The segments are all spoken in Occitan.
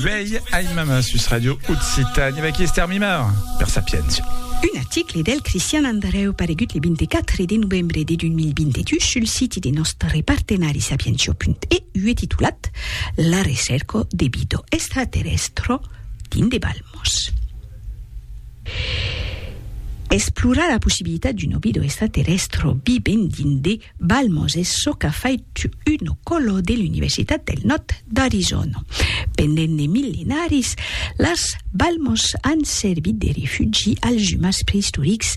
Uèi aimam a sus Radio Occitània vèqui Estèr Mimar per Sapientia. Un article del Cristian Andrèu paregut le 24 de novembre de 2022 sul siti de nòstre partenari sapientia.eu e titulat La recèrca de vida extraterrèstra dins de balmos. Explorar la possibilitat d'una vida extraterrèstra vivent dins de Balmos es çò qu'a fait Uno Colo de l'Universitat del Nòrd d'Arizòna. Pendent de millenaris, las balmos an servit de refugi als umans preistorics,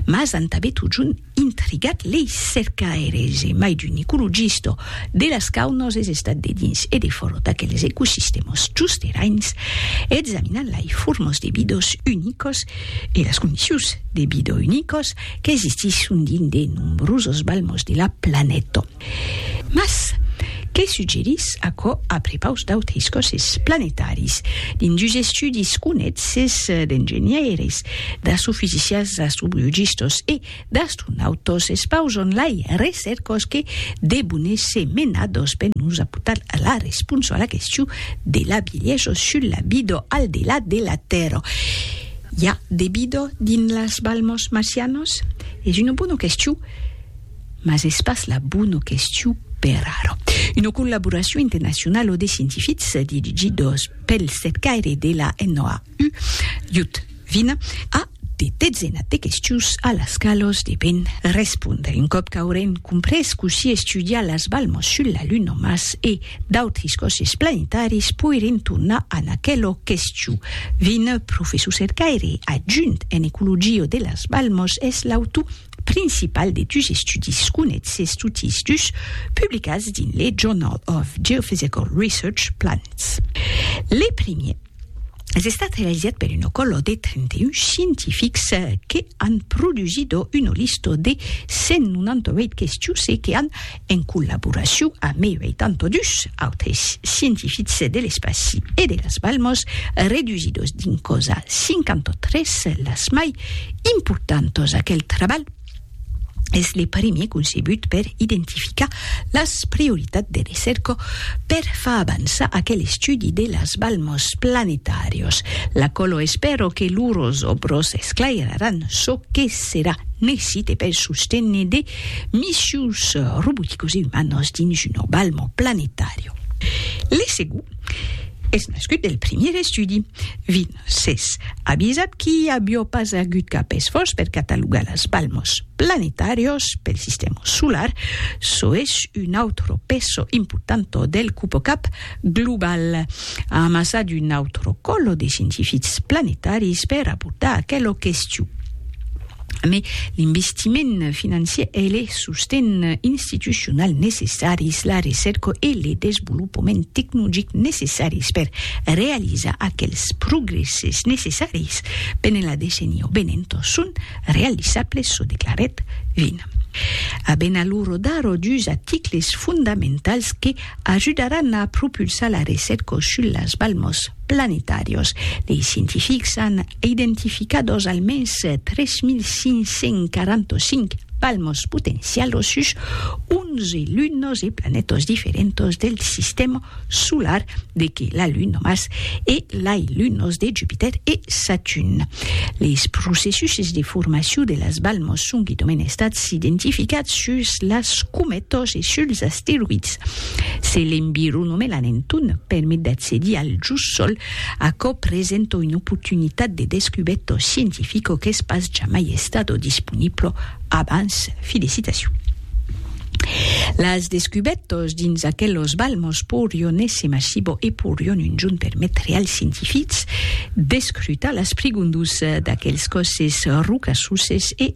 mas an tanben totjorn intrigat lei cercaires e mai d'un ecologista de las caunos es estat de dins e defòra d'aqueles ecosistèmas chusterains examinant lai formos de vidas unicas e las condicions de vida unicas qu'existisson dins de nombrosos balmos de la planeta. Mas, que suggerís aquò a prepaus d'autres còsses planetaris? Dins dus estudis conètz-es d'engenhaires, d'astrofisicians, d'astrobiologistas e d'astronautas espausan lei recèrcas que debon èsser menadas per nos aportar la responsa a la question de la bielhesa sus la vida al delà de la Tèrra. I a de bido dins las balmos marcianos? Es una bona question, mas es pas la bona question per ara. Una collaboracion internacionala de scientifics dirigidos pel cercaire de la NOAU, Jud Vine, a de dezenas de questions a las qualas deben respondre un còp qu'aurem comprés cossí estudiar las balmos sul la Luna, Mars e D'autris còsses planetaris poirien tornar a n'aquelo questiu. Vin, professor cercaire adjunt en ecologia de las Balmos, es l'autor principal de dus estudis conètses totis dus publicats dins le Journal of Geophysical Research, Planets. Le primier, es estat realizat per un ocòlo de 31 scientifics que an produsido una lista de 198 questius e que an, en collaboracion a mei 82 autres scientifics de l'espaci e de las Balmas, redusidos dins cosa 53 las mai importantas. Aquel trabalh. es le primier concebut per identificar las prioritats de recerca per far avançar aquel estudi de las balmas planetàrios. La colo espèro que lors òbros esclairaràn çò que serà necite per sostener de missius roboticos e umanos dins una balma planetària. Le segon es nascut del primier estudi. Vin. S'es avisat qu'i avió pas agut cap esfòrç per catalogar las balmos planetàrios pel sistèma solar, çò es un autro peso importanto del cupocap global, amassat un autro còlo de scientifics planetaris per abordar aquela question. Mes l'investiment financier e le sosten institucional necessaris, la recerca e le desvolopament tecnologic necessaris per realizar aquels progresses necessaris pendent la decenia venent son realizables, çò declarèt Vin. Aben alura d'ara dus articles fondamentals que ajudaràn a propulsar la recerca sus las balmas. planetàrios. Dei scientifics an identificat os almens 3.545 palmos potencials o sus 11 lunos e planetos diferentos del sistèma solar de que la Luna mas e lai lunos de Jupitèr e Saturn. Leis processuses de formacion de las balmos son guidomèn estats identificats sus las cometos e suls asteroids. Se l'environ o me la nenton, permet d'accedir al just sol, aquò presenta una oportunitat de descubèta scientifica qu'es pas jamai estada disponibla abans. Felicitacion! Las descubètas dins aquelos balmas porion èsser massiba e porion un jorn permetre als scientifics d'escrutar las prigondus d'aquels còsses rocassoses e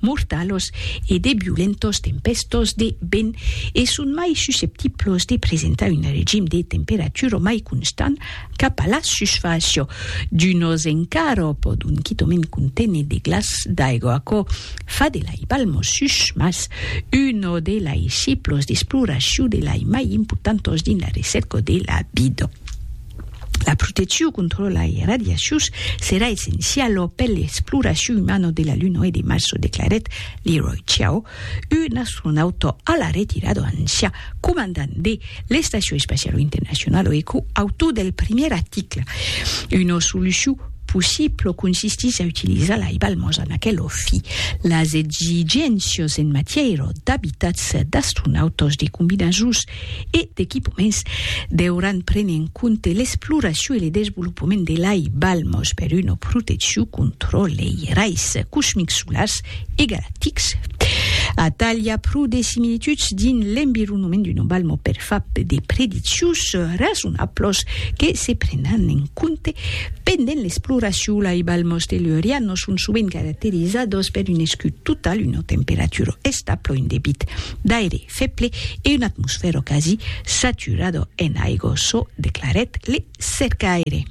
mortalos e de violentos tempèstos de vent e son mai susceptiblos de presentar un regim de temperatura mai constant cap a la susfàcia d'unos encara o pòdon quitament conténer de glaç d'aigua. Aquò fa de lai Palmosus mas uno de lai ciclos d'exploracion de lai mai importantos dins la recèrca de la vida. La proteccion contra lai radiacions serà essenciala per l'exploracion umana de la Luna e de Mars, o declarèt Leroy Chiao, un astronauta a la retirada ancià comandant de l'Estacion Espaciala Internacionala e co-autor del primièr article. Una solucion possibla consistís a utilizar lai balmas en aquela fi. Las exigéncias en matièra d'abitats d'astronautas de combinaisons e d'equipaments deuràn prene en compte l'exploracion e le desvolopament de lai balmos per una proteccion contra lei rais cosmics solars e galactics. Atal i a pro de similituds dins l'environament d'una balmo per far de prediccions rasonablos que se prenan en compte pendent l'exploracion. Lai balmos tellurianos son sovent caracterizados per un escut total, una temperatura establa, un debit d'aire feble e un atmosfèro quasi saturado en aigo, çò declarèt le cercaire.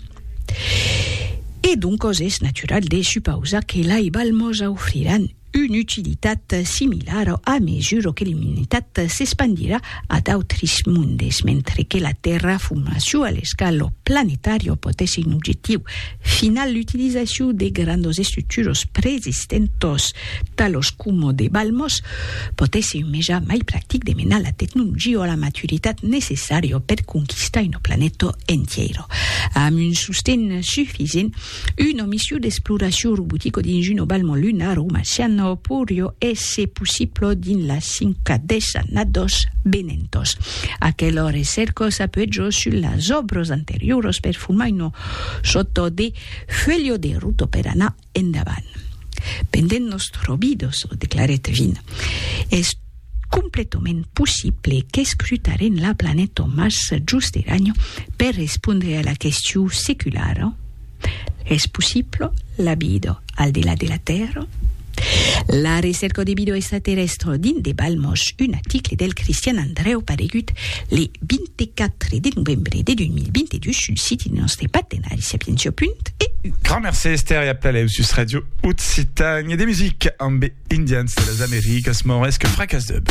E doncos es natural de supausar que lai balmos aufriràn una utilitat similara a mesura que l'umanitat s'espandirà a d'autris mondes, mentre que la terraformacion a l'escala planetària pòt èsser un objectiu final, l'utilizacion de grandos estructuros preexistentos, Talos coma de Balmos, pòt èsser un meja mai practic de menar la tecnologia a la maturitat necessària per conquistar una planeta entièra. Amb un sosten sufisent, una mission d'exploracion robotica dins una balma lunara o marciana poiriá èsser possibla dins las cinca desannadas venentas. Aquela recèrca s'apuèja sus las òbras anterioras per formar una sòrta de fuelha de ruta per anar Endavant. Pendent nos trobidos, declarèt Vin, es completament possible qu'escrutaren la planeta Mars just eranyo per respondre a la question seculara, es possible la vida al delà de la Tèrra? La recerca de vida extraterrèstra dins de Balmos, un article del Cristian Andrèu paregut le 20 de 4 de novembre de 2022 sul siti de nòstre partenari sapientia.eu. Grand mercé Esther e aplalèu sus Radio Occitània de musica ambe Indians de las Americas Maures que fracas dub.